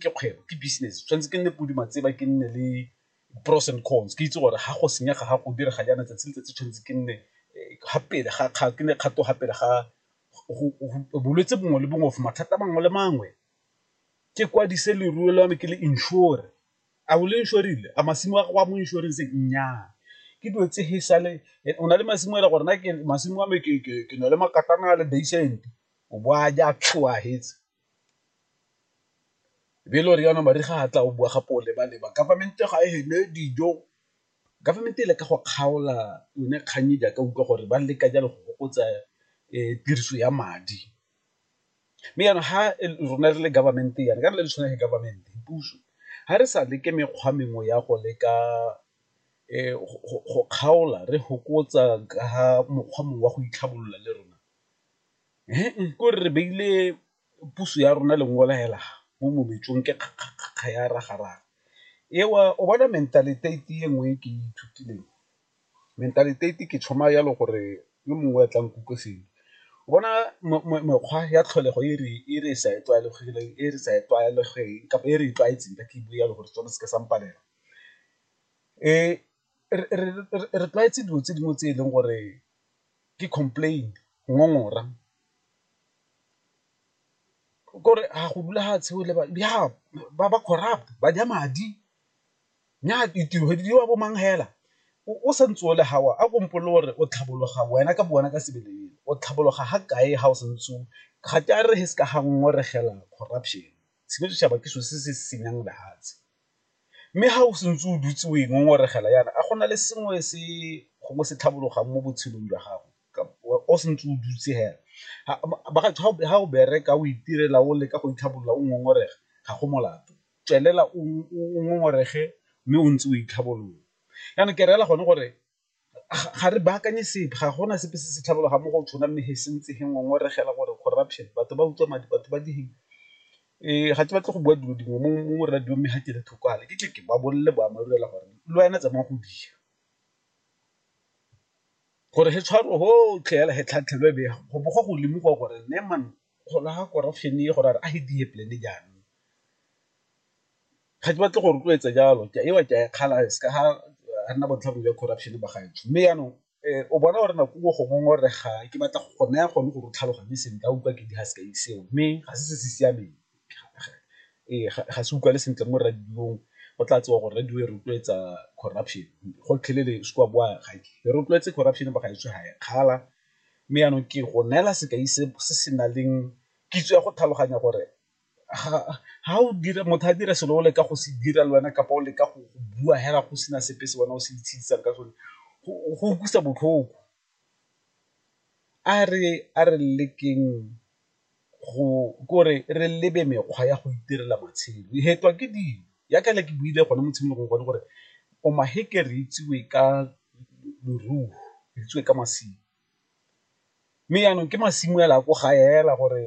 ke kgwebo ke business tshwanetse ke nne podi matseba ke nne le pros and cons ke itse gore ga go senyega ga go direga jaana tsatsi le tsatsi tshwanetse ke nne eh, ga pele ga ga ke ne kgato ga pele ga bolwetse bongwe le bongwe of mathata mangwe le mangwe ke kwadise leruo la me ke le insure a o le insurile a masimo a go a mo insurance nnyaa ke dilo tse he sale eh, o na le masimo e le gore na ke masimo a me ke na le makatana a le basent o bo a ja tlhoa hetse be le gore yana mariga a tla o bua gape o leba-leba government ga e ne dijo government e le ka go kgaola yone kgang e jaaka utlwa gore ba leka jalo go fokotsa tiriso ya madi. Mme yana ha rona re le government yana ka re le tshwana le government puso ha re sa leke mekgwa mengwe ya go leka go kgaola re fokotsa ka mokgwa mongwe wa go itlhabolola le rona. Kore re beile puso ya rona lengole hela mo mobetsong ke kgakga ya raga-raga eo, o bona mentaliteiti e nngwe e ke e ithutileng, mentaliteiti ke tšhoma jalo gore yo mongwe a tla nkutlwe sentle, o bona mekgwa ya tlholego e re sa e tlwaelegileng e re sa e tlwaelegileng kapa e re e tlwaetseng ka ke bua jalo gore setswana se ke sa mpalela . re tlwaetse dilo tse dingwe tse e leng gore ke complain, ngongora kore ga go dula ga tshweu le ba ba corrupt ba ja madi nyaa ditiro di diriwa bo mang fela o sa ntse o le fa o a ko mpolelle gore o tlhabolola wena ka bo wena ka sebele o tlhabolola ga kae ga o sa ntse o ga ke a re se ka ga ngongoregela corruption, selo se setšhaba ke selo se se senyang lefatshe. Mme ga o santse o dutse o e ngongoregela yana a gona le sengwe se gongwe se tlhabologang mo botshelong jwa gago o santse o dutse hela, ga o bereka o itirela o leka go itlhabolola o ngongorega ga go molato, tswelela o ngongorege mme o ntse o itlhabolole. Jaanong ke reela gone gore ga re baakanye sepe ga gona sepe se se tlhabologa mo go tshwana mme he se ntse he ngongoregela gore corruption batho ba utswa madi batho ba direng ga ke batle go bua dilo dingwe mo radio mme ga ke le thoko ale ke tle ke ba bolelele boammaaruri fela gore le wena tsamaya go dira gore he tshwaro gotlhe fela he tlhatlhelwe be go bo go go lemogiwa gore ne man go laga corruption e gore a re a he diye polele jaanong Ga ke batle go rotloetsa jalo ke a ewa ke a e kgala se ka ga re nna botlhabo jwa corruption ba gaetsho, mme jaanong o bona gore nako nngwe go ngongorega ke batla go naya gone gore o tlhaloganye sentle a utlwa ke di seo mme ga se se se siameng ga se utlwale sentle mo radio-ng go tla tsewa gore radio e rotloetsa corruption gotlhelele se ka bowa ga e rotloetse corruption ba gaetsho ga e kgala. Mme jaanong ke go neela sekai se se na leng kitso ya go tlhaloganya gore. ga o dira motho a dira selo o leka go se dira le wena kapa o leka go bua fela go sena sepe se wena o se itshidisang ka sone go utlwisa botlhoko. A re a re lekeng go ke gore re lebe mekgwa ya go itirela matshelo, we hetwa ke dilo yaka ne ke buile gone mo tshimologong gone gore o ma re itsewe ka leruo, re itsewe ka masimo. Mme jaanong ke masimo fela ko gae fela gore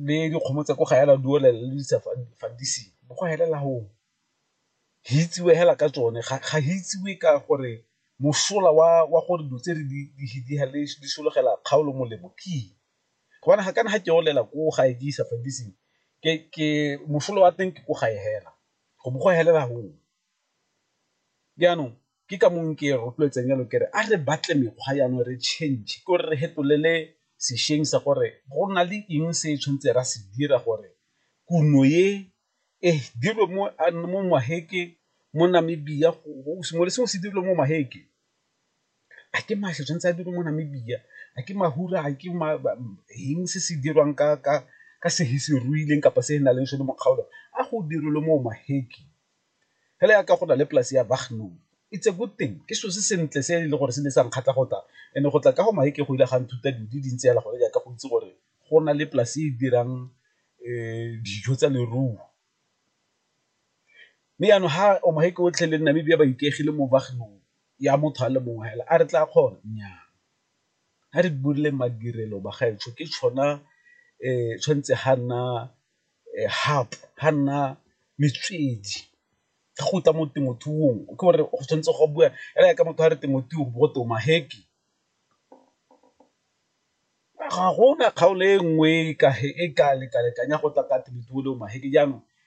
le dikgomo tsa ko gae fela di olela le di sa fandisiwe bo go felela go o, go itsiwe fela ka tsone ga go itsiwe ka gore mosola wa gore dilo tse di solegela kgaolo molemo ke eng, gobane ga kana ga ke olela ko gae ke isa fandising ke mosola wa teng ke ko gae fela go bo go felela go o, jaanong. ke ka mong ke rotloetsang jalo kere a re batle mekgwa jaanong re change ke gore re hetolele sešweng sa gore go na le eng se tshwanetse ra se dira gore kuno ye e dirwe mo mo maheke mo Namibia sengwe le sengwe se dirilwe mo maheke a ke mašwi tshwanetse a dirwe mo Namibia a ke mafura a ke eng se se dirwang ka ka ka se se ruileng kapa se na leng sone mo kgaolong a go dirilwe mo maheke. Hela yaka go na le polase ya Bagnoo. It's a good thing, ke selo se sentle se e leng gore se ne sa nkgatlha go tla and-e go tla ka go Maheke go ile ga nthuta dilo di dintsi hela gone yaka go itse gore go na le polase e dirang dijo tsa leruo. Mme yanong ha Maheke otlhe le Namibia ba ikaegile mo Bagnoo ya motho a le mongwe hela a re tla kgona? Nnyaa, ha re madirelo bagaetsho ke tshwanetse ga nna ga nna metswedi ga go tla mo temothuong ke gore go tshwanetse go bua e raya ka motho a re temothuo go twe maheke, ga gona kgaolo e nngwe e ka lekalekanya go tla ka temothuo le maheke jaanong